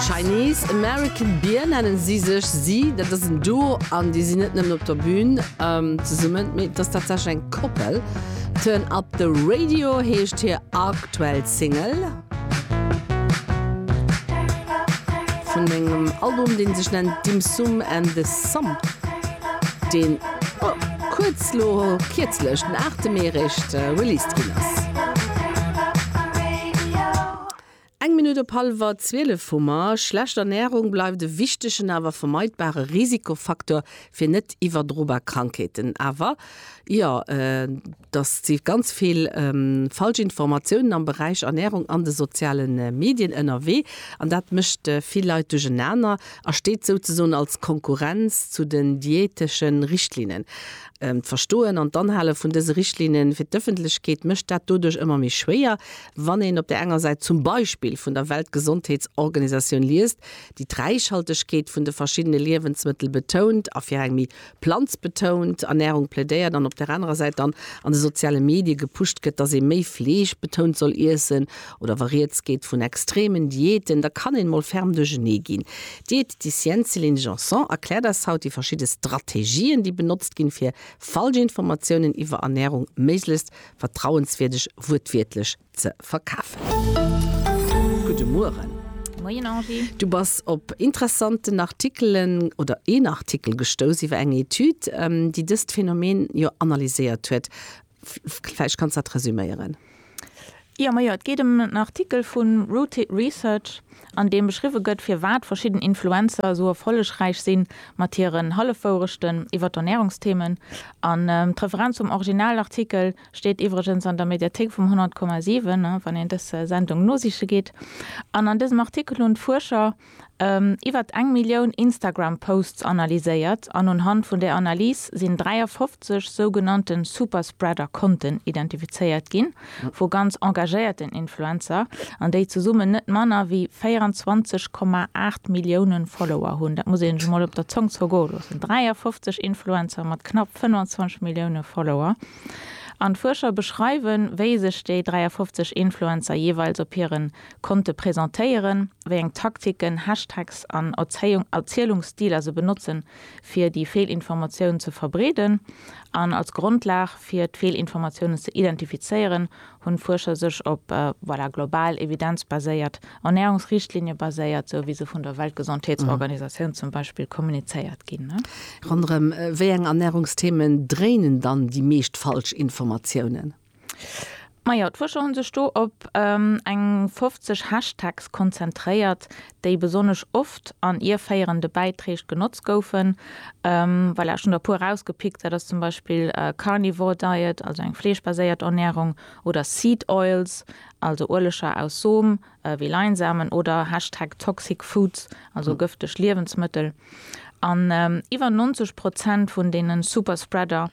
Chinese American Beer nennen si sech. Si, dat ass en Duo an déi sinn net nëmmen op der Bün zesummen, mee et ass tatsächlech eng Koppel. Turn Up The Radio heescht hir aktuell Single vun engem Album, dee sech nennt Dim Sum And The Sum, deen kuerz elo, kierzlech, den 8 Mee eréischt released ginn ass. Eng Minutt op hallwer 12 hu mer. Schlecht Ernärung bleift e wichtegen awer vermeidbare Risikofaktor fir net iwwerdrobar Krankheeten. Awer jo, dass si ganz vill falsch Informatiounen am Beräich Ernärung an de soziale Medien ënnerwee an dat mécht vill Leit duerchenaner a steet souzesoen als Konkurrenz zu den diätesche Richtlinnen. D'Verstoen an d'Anhale vun dëse Richtlinne fir d'Ëffentlechkeet mécht dat doduerch ëmmer méi schwéier. Wann een op där enger Säit zum Beispill vun der Weltgesondheetsorganisatioun liest, déi d'Räichhaltegkeet vun de verschiddene Liewensmëttel betount a fir eng méi planzbetount Ernärung plädéiert an op där anerer Säit dann an de soziale Medie gepusht gëtt, dass ee méi fleeschbetount soll iessen oder wa Rieds geet vun extremen Diäten, da kann een mol ferm duerchernee ginn. D'Diäteticienne Céline Janson erkläert eis haut déi verschidde Strategien, déi benotzt ginn, fir falsch Informatiounen iwwer Ernärung méiglechst vertrauenswierdeg wuertwiertlech ze verkafen. Gudde Mueren. Moien Angie. Du bass op interessanten Artikelen oder een Artikel gestouss iwwer eng Etüd, déi dëst Phänomen jo analyséiert huet. Vläicht kanns dat resüméieren. Jo, majo, et geet ëm en Artikel vun Rooted Research. an deem beschriwwe gëtt, firwat verschidden Influencer esou erfollegräich sinn mat hiren Hallefwourechten iwwer d'Ernärungsthemen. An d'Referenz zum Originalartikel steet iwwregens an der Mediathéik vum 100,7, wann een dës Sendung nosiche geet. An an dësem Artikel hunn d'Fuerscher iwwert eng Millioun Instagram-Posts analyséiert an unhand vun där Analys sinn 53 sougenannte Superspreader-Konten identifizéiert ginn, vu ganz engagéierten Influencer an déi zesummen net manner wéi 24,8 Millioune Follower hunn. Dat muss ee sech emol op der Zong zergoe loossen, 53 Influencer mat knapp 25 Millioune Follower. An d'Fuerscher beschreiwen, wéi sech déi 53 Influencer jeeweils op hire Konte presentéieren, wéi eng Taktiken, Hashtags an Erzielungsstiler se benotzen, fir déi Feelinformatiounen ze verbreeden an als Grondlag fir d'Feelinformatiounen ze identifizéieren, hunn d'Fuerscher sech op, voilà, global evidenzbaséiert Ernärungsrichtlinie baséiert, sou wéi se vun der Weltgesondheetsorganisatioun zum Beispill kommunizéiert ginn. Ronderëm wéi eng Ernärungsthemen dréinen dann déi meescht Falschinformatiounen? Majo, d'Fuerscher hunn sech do op eng 50 Hashtags konzentréiert, déi besonnesch oft an ierféierende Bäitreeg genotzt goufen. Voilà, ech hunn der e puer erausgepickt, dat ass zum Beispill Carnivore Diet, also eng fleeschbaséiert Ernährung, oder Seed Oils, also Ueleger aus Som wéi Leinsamen, oder Hashtag Toxic Foods, also gëfteg Liewensmëttel. An iwwer 90 Prozent vun deene Superspreader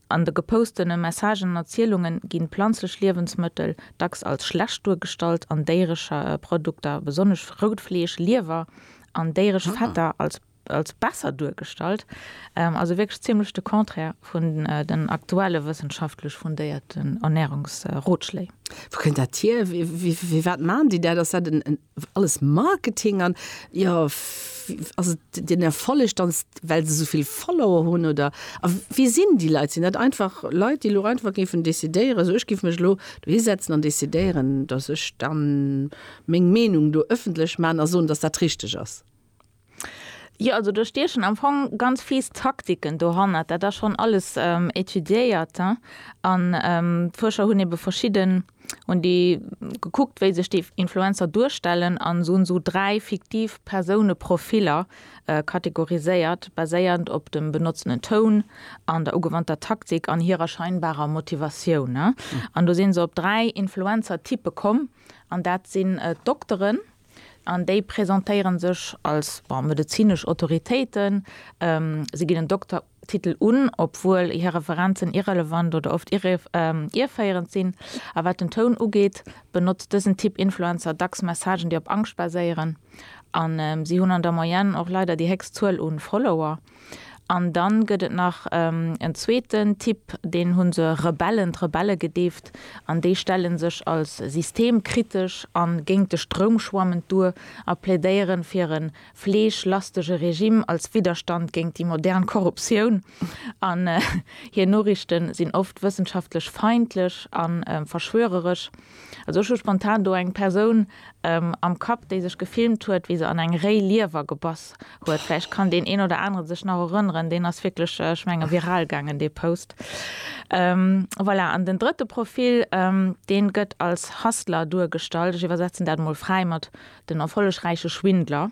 An de gepostene Messagen an Erzielunge ginn planzlech Liewensmëttel dacks als schlecht duergestallt an déieresch Produkter, besonnesch rout Fleesch, Liewer an déieresch Fetter, als besser duergestallt. Also wierklech zimmlech de Contraire vun den aktuelle wëssenschaftlech fundéierten Ernärungsrotschléi. Wou kënnt dat hier? Firwat maachen déi dat? Ass dat en. alles Marketing an jo ass et den Erfolleg dann well se souvill Follower hunn oder a wie sinn déi Leit? Sinn dat einfach Leit déi elo einfach géifen decidéieren esou ech giff mech elo dohi setzen an decidéieren datt ech dann meng Meenung do ëffentlech man a soen datt dat richteg ass? Jo, also do stiechen am Fong ganz fies Taktiken dohannert. Dat ass schonn alles étudiéiert an d'Fuerscher hunn ebe verschidden, hunn déi gekuckt, wéi sech déi Influencer duerstellen an se hunn esou dräi fiktiv Persouneprofiller kategoriséiert, baséierend op dem benotzenen Toun an der ugewannter Taktik an hirer scheinbarer Motivatioun. An do si se op dräi Influencer-Typpe komm an dat sinn d'Dokteren, An déi presentéiere sech als medezinesch Autoritéiten. Si ginn en Doktertitel un, obwuel hir Referenzen irrelevant oder oft ierféierend sinn. A wat den Toun ugeet, benotzt dësen Typ Influencer dacks Messagen, déi op Angscht baséieren. A si hunn an der Moyenne och leider déi héchst Zuel u Follower. An dann gëtt et nach en zweeten Typ, deen hu se Rebellen, d'Rebelle gedeeft, an déi stelle sech als systemkritesch a géint de Stroum schwammend duer a plädéieren fir e fleeschlastege Regime als Widderstand géint déi modern Korruptioun. An hir Noriichte sinn oft wëssenschaftlech feindlech a verschwöreresch. Also ech hu spontan do eng Persoun. am Kapp, déi sech gefilmt huet, wéi se an eng réi Liewer gebass huet. Vläicht kann deen een oder anere sech nach erënneren, deen ass wierklech, ech menge viral gaangen, dee Post. Voilà, an den drëtte Profil, deen gëtt als Hustler duergestallt, ech iwwersetzen dat emol fräi mat den erfollegräiche Schwindler.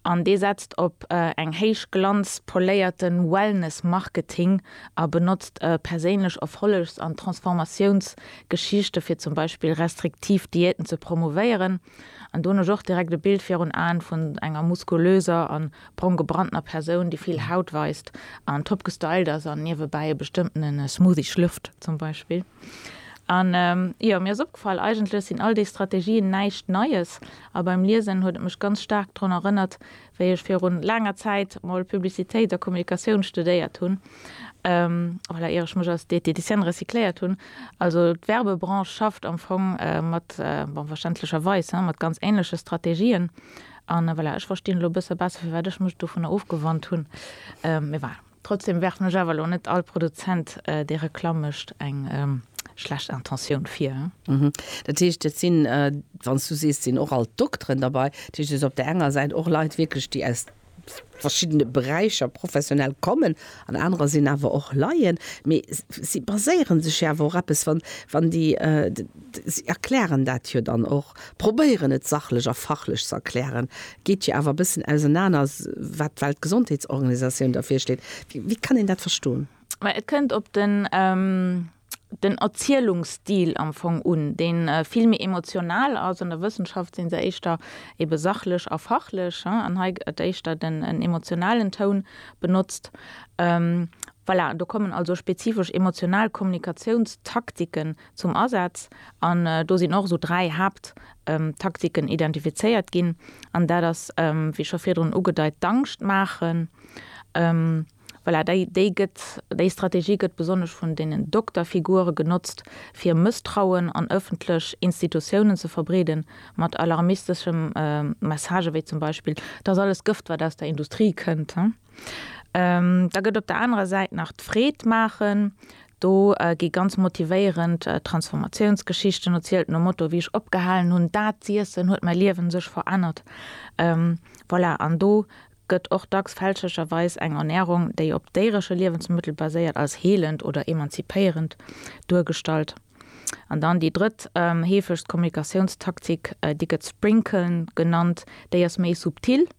An dee setzt op eng héichglanz poléierte Wellness-Marketing a benotzt perséinlech Erfollegs an Transformatiounsgeschichte fir zum Beispill restriktiv Diäten ze promouvéieren an donosch och direkt e Bild virun Aen vun enger muskulöser an brong gebranntener Persoun, déi vill Haut weist an top gestylt ass an niewebäi e bestëmmtene Smoothie schlürft zum Beispill. An jo, mir ass opgefall, eigentlech sinn all déi Strategien näischt Neies A beim Liesen huet et mech ganz staark drun erënnert, wéi ech virun laanger Zäit mol Publicitéit a Kommunikatioun studéiert hunn, voilà, ier ech mech als Diététicienne recycléiert hunn. Also d'Werbebranche schafft am Fong mat, bon, verständlecherweis, hein, mat ganz ähnleche Strategien. An voilà, ech verstinn elo e bësse besser, firwat ech mech dovunner ofgewannt hunn. Mee voilà. Trotzdem werfen ech awer lo net all Produzent dee Reklamm mécht eng schlecht Intentioun vir. Dat heescht, et sinn, wann s du sees, et sinn och alt Dokteren derbei, dat heescht, et ass op där enger Säit och Leit wierklech, déi aus verschiddene Beräicher professionell kommen an anerer sinn awer och Laien. Mee si baséiere sech jo awer och eppes, wann, wann déi, si erklären dat jo dann och. probéieren et sachlech a fachlech ze erklären, geet jo awer e bëssen ausenaner, wat d'Weltgesondheetsorganisatioun da virschléit. Wéi kann een dat verstoen? Mä et kënnt op den, den Erzielungsstil am Fong un, dee vill méi emotional ass. An der Wëssenschaft si se éischter ebe sachlech a fachlech, an hei gëtt éischter den, en emotionalen Toun benotzt. Voilà, do kommen also spezifesch emotional Kommunikatiounstaktiken zum Asaz an do sinn och esou dräi Haapttaktiken identifizéiert ginn an dat ass, wéi scho virdrun ugedeit, d'Angscht maachen. Voilà, déi gëtt, déi Strategie gëtt besonnesch vun deenen Dokterfigure genotzt, fir Mësstrauen an ëffentlech Institutiounen ze verbreeden, mat alarmisteschem Message, wéi zum Beispill, 't ass alles Gëft, wat aus der Industrie kënnt. Da gëtt op der anerer Säit nach d'Freed maachen. Do gi ganz motivéierend Transformatiounsgeschichten erzielt nom Motto, wéi ech opgehalen hunn, dat z'iessen, huet mäi Liewen sech verännert. Voilà, an do gëtt och dacks fälschlecherweis eng Ernärung, déi op déieresche Liewensmëttel baséiert, als heelend oder emanzipéierend duergestallt. An dann déi drëtt heefegst Kommunikatiounstaktik, déi gëtt Sprinkeln genannt, déi ass méi subtil.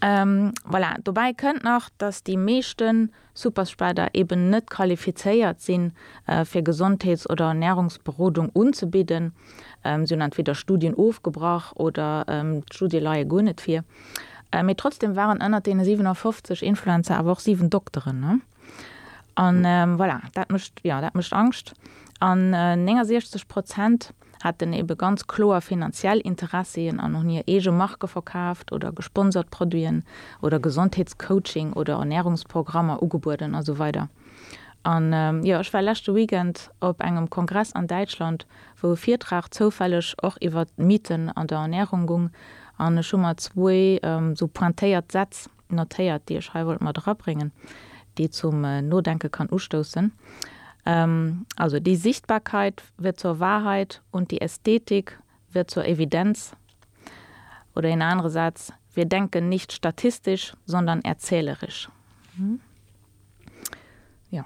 Voilà, dobäi kënnt nach, dass déi meeschte Superspreader eben net qualifizéiert sinn, fir Gesondheets oder Ernärungsberodung unzebidden. Si hunn entweder Studien ofgebrach oder d'Studie leie guer net vir. Mee trotzdeem waren ënnert deene 57 Influencer awer och 7 Dokteren. An voilà, dat mécht, jo, dat mécht Angscht. An 69 Prozent hätten eebe ganz kloer finanziell Interessien an hunn hir eege Marke verkaaft oder gesponsert Produiten oder Gesondheetscoaching oder Ernärungsprogrammer ugebueden a sou weider. An jo, ech war leschte Weekend op engem Kongress an Däitschland, wou e Virtrag zoufälleg och iwwert d'Mythen an der Ernärung gung an ech hu mer zwou esou pointéiert Sätz, notéiert, déi ech hei wollt mat erabréngen, déi zum Nodenke kann ustoussen. Also, Die Sichtbarkeit wird zur Wahrheit und die Ästhetik wird zur Evidenz. Oder een anere Saz, Wir denken nicht statistisch, sondern erzählerisch. Ja.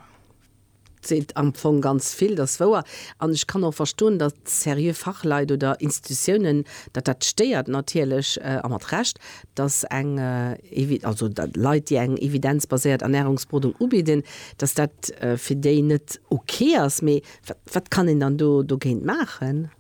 seet am Fong ganz vill, dat ass wouer. An ech kann och verstoen, datt seriö Fachleit oder Institutiounen, datt dat stéiert natierlech, a mat Recht, datt eng, also Leit, déi eng evidenzbaséiert Ernärungsberodung ubidden, datt dat fir déi net ok ass. Mee wat kann een dann do dogéint maachen?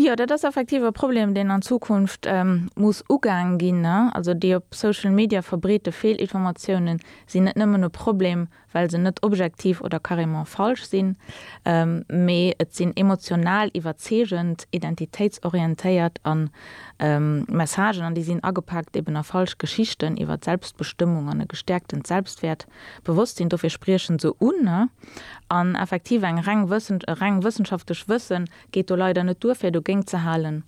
Jo, dat ass effektiv e Problem, deen an Zukunft muss ugaang ginn. Also déi op Social Media verbreete Feelinformatiounen sinn net nëmmen e Problem, well se net objektiv oder carrément falsch sinn, mee et sinn emotional iwwerzeegend, identitéitsorientéiert a Messagen, an déi sinn agepaakt eben a falsch Geschichten iwwer d'Selbstbestëmmung an e gestäerktent Selbstwäert Bewosstsinn. Dofir spriechen se un. An effektiv eng reng, e reng wëssenschaftlech Wëssen geet do leider net duer fir dogéint ze halen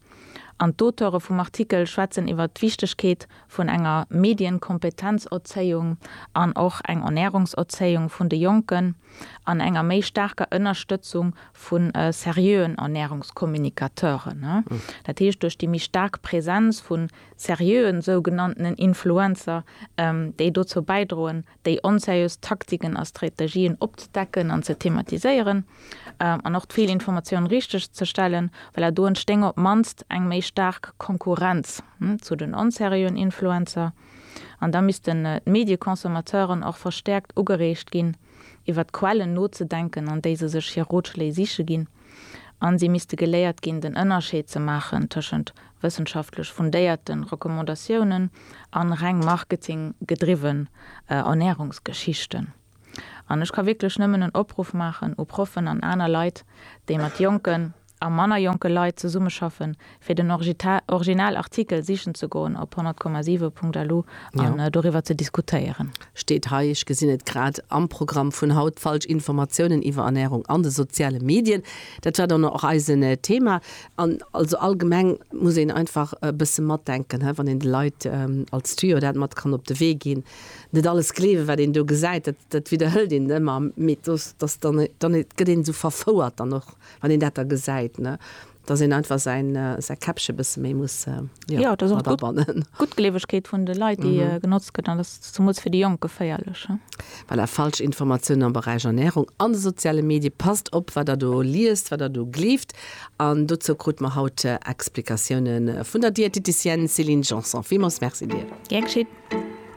an d'Auteure vum Artikel schwätzen iwwert d'Wichtegkeet vun enger Medienkompetenzerzéiung an och eng Ernärungserzéiung vun de Jonken an enger méi staarker Ënnerstëtzung vu seriöen Ernärungskommunikateuren, dat heescht duerch déi méi staark Präsenz vu seriöen sougenanntenen Influencer, déi dozou bäidroen, déi onseriös Taktiken a Strategien opzedecken an ze thematiséieren an och d'Feelinformatiounen richteg ze stellen, well do entstéing op d'mannst eng méi staark Konkurrenz zu den onseriöen Influencer. An da missten d'Medieconsomateuren och verstäerkt ugereegt ginn, iwwert d'Quellen nozedenken, an déi se sech hir Rotschléi siche ginn. a si misste geléiert ginn, den Ënnerscheed ze maachen tëschent wëssenschaftlech fundéierte Recommandatiounen a reng marketinggedriwwen Ernärungsgeschichten. An ech ka wierklech nëmmen en Opruff maachen u Proffen an aner Leit, déi mat jonken a manner jonke Leit zesummeschaffen, fir den original Artikel sichen ze goen op 100,7.lu an doriwwer ze diskutéieren. Steet hei, ech gesinn et grad am Programm vun haut, falsch Informatiounen iwwer Ernärung an de soziale Medien. Dat war dann och eisen Thema. An also allgemeng muss een einfach e bësse matdenken, wann een de Leit als Tuyau dat mat kann op de Wee ginn. Net alles gleewen, wat een do gesäit, dat widderhëlt een ëmmer, mee et gëtt een esou verfouert dann och, wann een dat da gesäit. Dass een einfach säin Käppche bësse méi muss erabannen. D'Guttgleewegkeet vun de Leit, déi genotzt gëtt, an dat ass zemools fir déi Jonk geféierlech. Voilà, falsch Informatiounen am Beräich Ernärung an de soziale Medie. Passt op, wat der do liest, wat der do gleeft. An dozou krute mer haut Explikatioune vun der Diäteticienne Céline Janson. Villmools Merci dir. Gär geschitt.